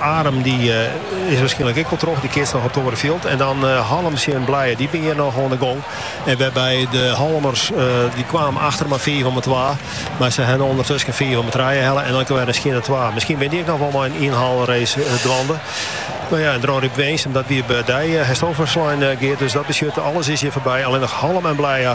Arum dy is waarskynlik ek wol troch. Dy keatst noch op it oare fjild. En dan Hallum tsjin Blije. Dy binne hjir noch oan de gong. En wêrby de Hallumers dy kwamen achter mei fiif om 'e twa. Mar se ha ûndertusken fiif om 'e trije helle. En ek wer in skjinne twa. Miskien binne dy ek noch wol mei in ynhaalrace dwaande. No ja, en Dronryp Winsum, dat wie by dy hasto ferslein Geart. Dus dat betsjut alles is hjir foarby. Allinnich Hallum en Blije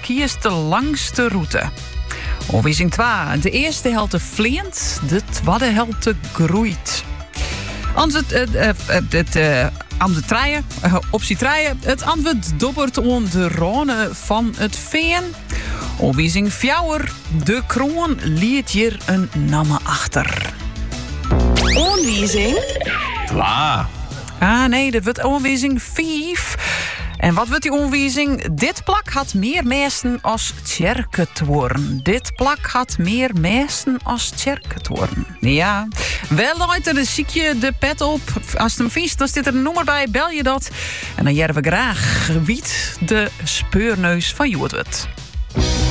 Kies de langste rûte. Oanwizing twa, De earste helte fleant, de twadde helte groeit. Antwurd, eh, eh, eh, het, eh, antwurd trije, eh, optie trije. It antwurd dobbert oan de râne fan it fean. Oanwizing fjouwer, De kroan liet hjir in namme achter. Oanwizing. Twa. Ah nee, dit wurdt oanwizing fiif. En wat wurdt dy oanwizing? Dit plak hat mear mêsten as tsjerketuorren. Dit plak hat mear mêsten as tsjerketuorren. Ja, wêr leit er, sykje de pet op. Ast him fynst, dan stiet der in nûmer by, belje dat. En dan hearre we graach wa't de speurneus fan hjoed wurdt.